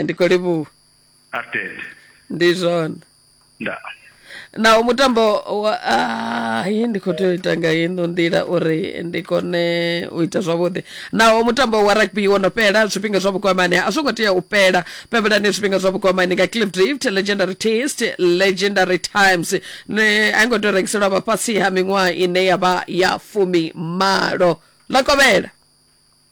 ndi khou livhuwa arted ndi zwone nda naho mutambo wa ai ndi khou tea u ita nga ino nḓila uri ndi kone u ita zwavhuḓi naho mutambo wa rugby wo no fhela zwifhinga zwa vhukwamani a zwo ngo tea u fhela pembelani zwifhinga zwa vhukwamani nga cliff drift legendary taste legendary times ne a i ngo tea u rengiselwa vhafhasi ha miṅwaha ine ya vha ya fumi malo ḽa kovhela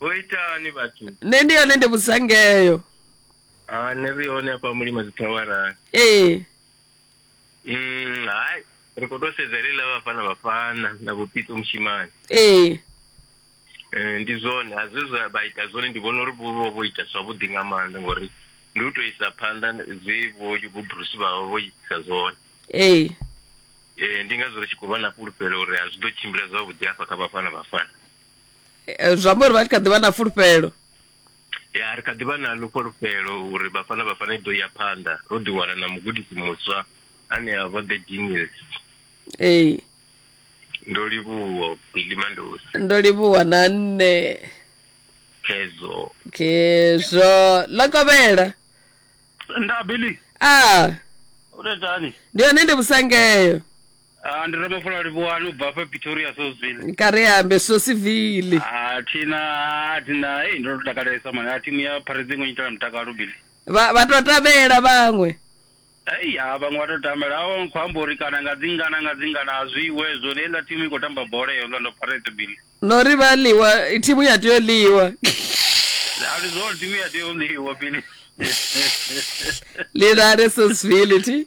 Vho itani vhathu? nṋe ndi hone ndi vhusangeyo Ah, nṋe ri hone hafha mulima dzithawara. ee Mm, hai. Ri khou tou sedza ḽe ḽa vhafana vhafana na vhupito mushimani. ee Eh, ndi zwone a zwe zwa vha ita zwone ndi vhona uri vho vha vho ita zwavhuḓi nga maanḓa ngori ndi u tou isa phanḓa zwe vho vho Bruce vha vha vho itisa zwone. ee Eh, ndi ngazwo ri tshi khou vha na fhulufhelo uri a zwi ḓo tshimbila zwavhuḓi hafha kha vhafana vhafana. Eh, zwi amba uri vha tshi kha ḓi vha na fulufhelo ya ri kha ḓi vha na ḽo fhulufhelo uri vhafana vhafana i ḓo ya phanḓa ro ḓi wana na mugudisi muswa ane a vha the genius ee ndo livhuwa billy mandosi ndo livhuwa na nṋe phezo khezwo lokovhela nda billy a u tou itani ndi hone ndi vhusangeyo Ah, ndi Ramafula Livhuwani u bva hafha Pretoria Sosville. kareambe sosivili Ah, thina ah, thina hey ndo to takalesa mani. Ah, timu ya Pirates ngo nyitela mutakalo bili. vha vha to tabela vhaṅwe Hey, ah, vhaṅwe vha to tambela awo nkho amba uri kana nga dzingana nga dzingana a zwi iwe zwo le la timu i khou tamba bola ya Orlando Pirates bili. no ri vha ḽiwa thimu ya tea u ḽiwa A ndi zwone timu ya tea u ḽiwa bili. lilale sosivili thi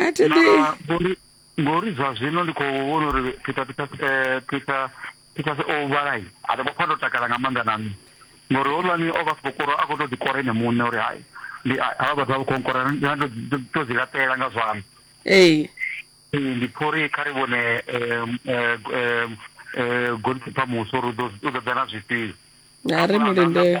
a thi ḓi ngori ngori zwa zwino ndi khou vhona uri peter peter eh, peter peter o vhalai a ḓo pfa ndo takala nga maanḓa na nṋe ngori holwani o vha sikokoro a khou tou ḓikora ene muṋe uri hai ndi havha vhathu vha vha khou nkora to dzi laṱela nga zwana ee ndi pfha uri kha ri vhone um, eh, eh, eh, golkipa muswa uri u ḓo- u ḓo ḓa na zwifhio a ri mulindele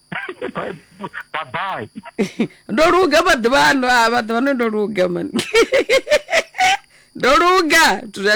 Bye- bye bye ndo luga maḓuvha ano a maḓuvha ano ndo luga mani ndo luga zwithu zwa